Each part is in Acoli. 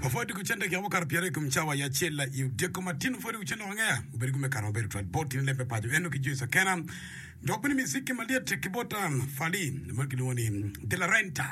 Papa odiko cente gin mukato pyeraryo i kom cawa i acel la i odyeko matino pwod i ucen lok angeya. Obedo kome kare maber twal bot tyen leb me paco eno ki jo i Sakena dok bene miziki malyet ki bot Fally ma kilwongo ni De La Renta.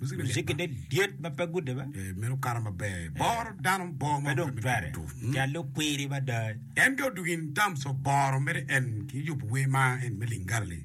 Muziki malyet Muziki ba. ne lyet ma pe gude ba. Eh, meno kara maber. Boro dano bor ma Pe dong obedo twere. tutu. Mm. Cal lukwiri mada. En ke odugin terms of boro mere en ki yubo wer ma en me Lingala-li.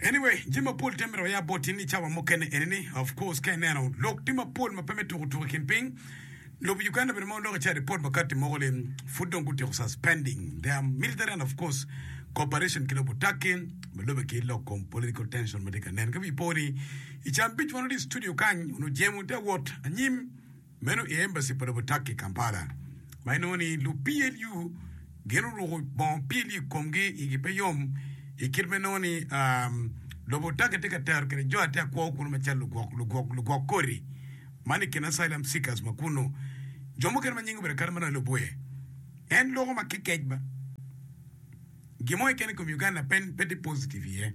Anyway, jami mapol tye myero oya bot in i cawa mukene eni ni, of course ka ineno lok tye mapol ma pe me tuku tuku i kin piny, lobo Uganda bedo ma oloko ci aripot makati mogo li pud dong gutyeko suspending their military and of course cooperation ki lobo Turkey ma lube ki lok kom political tension ma tye ka nen. Ka wi po ni i ca abic wan wati i studio kany, onongo jemo tye awot anyim. Meno i embaci pa lobo Turkey i Kampala ma inongo ni lu-PLU gin oruko bongo PLU i komgi, igi pe yom i kit ma inongo ni lobo Turkey tye ka tero kwede jo atir kwo kunu macalo lugwok koti ma ni i kin asylum seekers ma kunnu. Jo mukene ma nyingi obedo kadi manongo lubwe. En loko ma kekec ba. Gin mo keken i kom Uganda pe tye positive iye.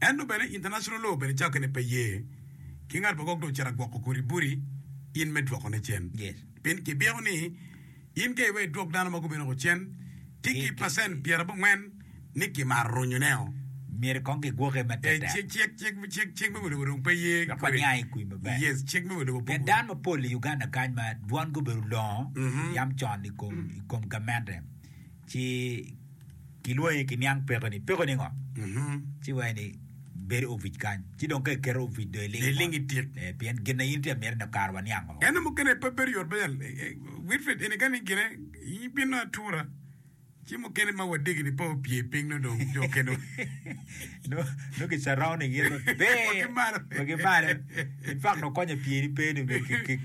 Ento bene International Law bene cakke ne pe ye ki ngat ma gwok dong ocito agwoko kodi boti in me dwoko ne cen. Pien ki byeko ni in ka iweyo idwok dano ma gubino ko cen tye ki percent pyera bongwen ni ki maro runyu ne o. Myero kong ki gwoke ma tek tek. Cik, cik, cik, cik me wa lobo dong pe ye Dok kodi. waniang i kwi maber. Yes, cik me wa lobo pe Pien dano mapol i Uganda kany ma dwongi obedo olongo yam con i kom, i kom gamente. ci kilwongi ki niang peko ni peko ningo ci waye ni bedo ovic kany ci dong ka iketo ovic do iling iling itik eh, pien gin na in itye amyero ni kare waniang woko Eno mukene pe bedo yot bene eh, eh, Wilfred eni kani gine ibino atura ci mukene ma wadegi ni pe opye piny nongo dong jo kene nongo ki surrounding in maber wa ki malo wa ki malo in fact nongo konye pye ni pe ni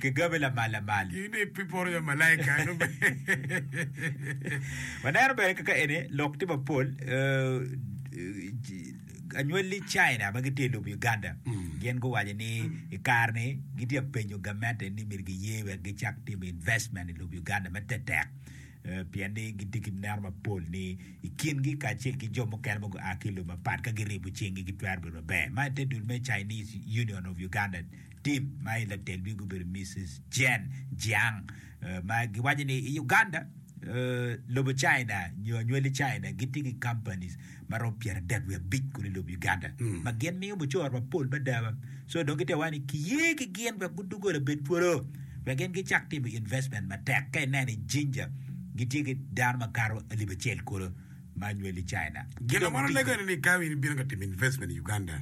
ki gabe lamal lamal in ni pi poro ya malaika waneno bene kaka eni lok tye mapol anywali China ma gitye i lobo Uganda mm. gin guwaco ni i kar ni gitye penyo gamente ni myero giye wek gicak timo investment i lobo Uganda me tetek Pien ni gitye ki meno mapol ni i kingi kacel ki jo mukene ma gua ki i lobe mapat ka giribo cinggi gitwero bedo maber. Ma i te dul me Chinese Union of Ugandan team ma i latel wigi obedo Misis Jen Jiang ma giwaco ni i Uganda, lobo China nyo anywali China gitye ki companies ma romo pyeradek wiye abic kunu i lobo Uganda, ma gin miyo mucoro mapol mada. So dong gitye ka waco ni kiye ki gin wek gudugo labed twolo, wek gin gicak timo investment matek. Ka ineno i Jinja, gitye ki dano ma kato alip acel kulu ma nyweli China. Ki Gin dong meno lego gitye. nini ka in ibino ka timo investment i Uganda?